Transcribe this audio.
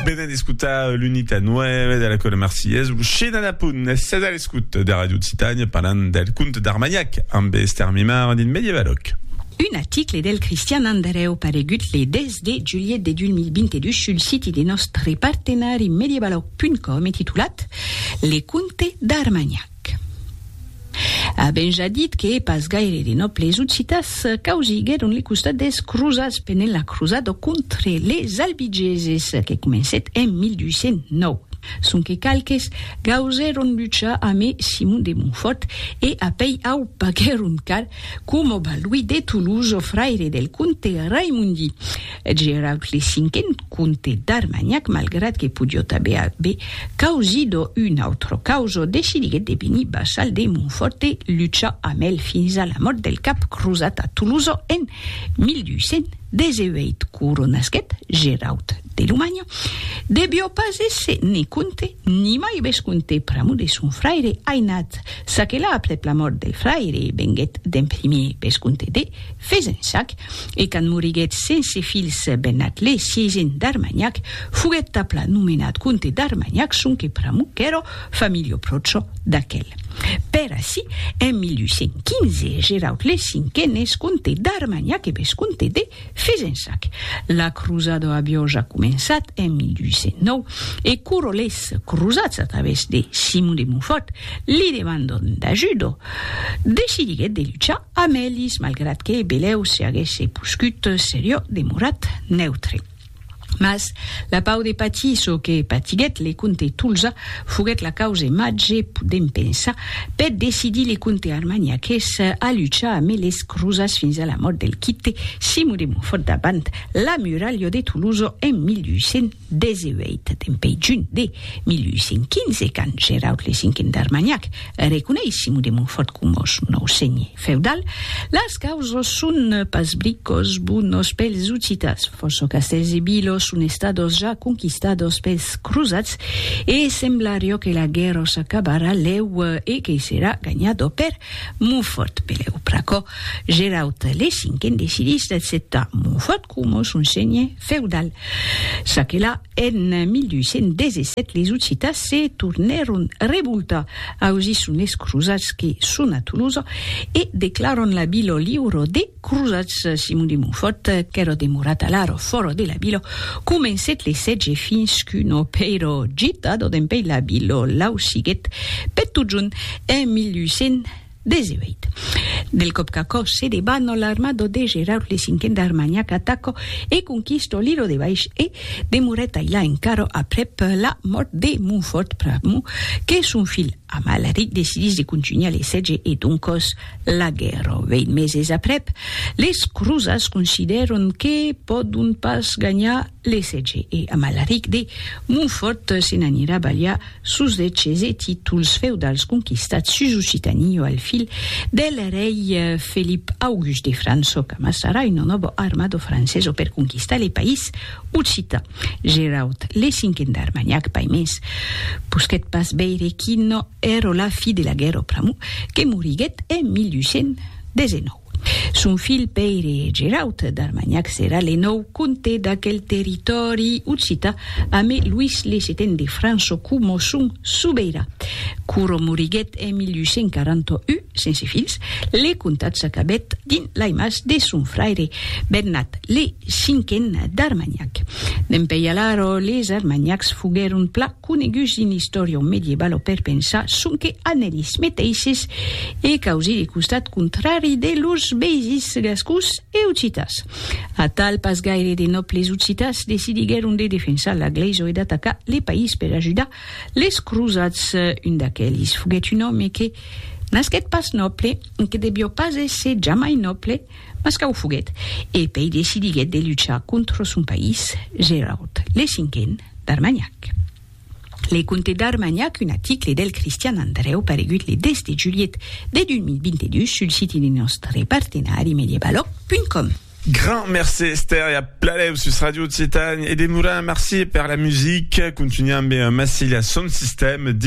Venen d'escutar l'unita 9 de la Cola Marcillès, lo China da Punt, sèt a l'escut de Radio Occitània parlant del conte d'Armanhac amb Esther Mimar dins Medievaloc. Un article del Cristian Andrèu paregut le 10 de julhet de 2022 sul siti de nòstre partenari medievaloc.com e titulat Le conte d'Armanhac. Avèm ja dit que pas gaire de nòbles occitans causiguèron le costat dels crosats pendent la crosada contre les albigeses que comencèt en 1209, sonque qualques gausèron luchar amé Simon de Montfòrt e apèi au paguèron car, coma Balduí de Toulouse, fraire del comte Raimondi. Eth Geraut le cinquen comte d'Armanhac, malgrat que podiot aver aver causido un autre causo, decidiguet de venir vassal de Montfort e luchar amb el fins a la mòrt del cap crosat a Tolosa en 1218. Coronasquet Geraut de Lomanha devió pas èsser ne comte ni mai vescomte pr'amor de son fraire ainat, çaquelà aprèp la mòrt del fraire venguet d'en primier vescomte de. Fezensac, e quand moriguèt sense filhs Bennat le sièisen d'Armanhac, foguèt tapla nomenat comte d'Armanhac sonque pr'amor qu'èra familio pròcho d'aquel. Per ací, en 1815, Geraud le Cinquen es comte d'Armanhac e vescomte de Fezensac. La crosada aviá ja començat en 1809, e quora les crosats a través de Simon de Montfòrt li demandon d'ajuda, decidiguèt de luchar Amelis, malgrat que Belèu se aguèsse poscut seriò demorat neutre. Mas la pau de patir çò que patiguèt le comte Tolza foguèt la cause màger, podèm pensar, per decidir le comte armagnaqués a luchar amé les crosats fins a la mòrt del quite Simon de Montfòrt davant la muralha de Tolosa en 1800. 18 dempè junh de 1815, quand Geraud le Cinquen d'Armagnac reconeis Simon de Montfòrt coma son nòu senhè feudal, las causas son pas bricòs bonos pels Ocitans, fòrça castèls e vilas son estadas ja conquistadas pels crosats e semblariá que la guèrra s'acabarà lèu e que serà ganhada per Montfòrt. Pelèu pr'aquò, Geraud le Cinquen decidís d'acceptar Montfòrt, coma son senhe feudal. Çaquelà, en 1217 les Occitans se tornèron revoltar, ausi son es crosats que son a Tolosa e declaran la vila liura des crosats. Simon de Montfòrt, qu'èra demorat alara fòra de la vila, comencèt le sètge fins qu'una pèira gitada dempèi la vila l'ausiguèt per totjorn en 1200. 18. Del còp qu'aquò se debat, no l'armado de Geraud le cinquen d'Armagnac atacò e conquistò Liro de Baish e demorèt ailà encara aprèp la mòrt de Montfort pr'amor que son filh Amalaric decidís de contunhar le sètge e doncòs la guèrra. Vèit meses aprèp, les crosats considèron que pòdon pas ganhar Lessètge e Amalaric de Montfòrt se n'anirà balhar sos deches e títols feudals conquistats sus Occitanie o al fil del rei Felip August de França o qu'amassarà una nòva armada francesa per conquistar le país occitan. Geraud le Cinquen d'Armagnac Paimés posquèt pas veire quina èra la fi de la guèrra pr'amor que moriguèt en 1819. Son filh Pèire Geraut d'Armanhac serà le nòu comte d'aquel territòri occità amé Luís le Seten de França coma son sobeirà. Quora moriguèt en 1841, sense filhs, le comtat s'acabèt dins lai mas de son fraire Bernat le Cinquen d'Armanhac. Dempeï alara les Armanhacs foguèron pla coneguts dins l'istòria medievalo per pensar sonque a nelis meteisses e causir le costat contrari de lors veisins gascons e occitas. Atal, pas gaire de nòbles occitas decidiguèron de defensar la glèisa e d'atacar le país per ajudar les crosats. Un d'aquelis foguèt un òme que nasquèt pas nòble e que devió pas èsser jamai nòble, Mas qu'a o foguèt, e pei decidiguèt de luchar contra son país, Gerard, le cinquen, d'Armagnac. Le conte d'Armagnac, un aticle del Cristian Andrèu paregut le 10 de julhet de 2022 sul siti de nòstre partenari medievaloc.com. Grand merci Esther e a pladèu sus Radio Occitània e demorant merci per la musica, continuam ben Massilia son sistèm dins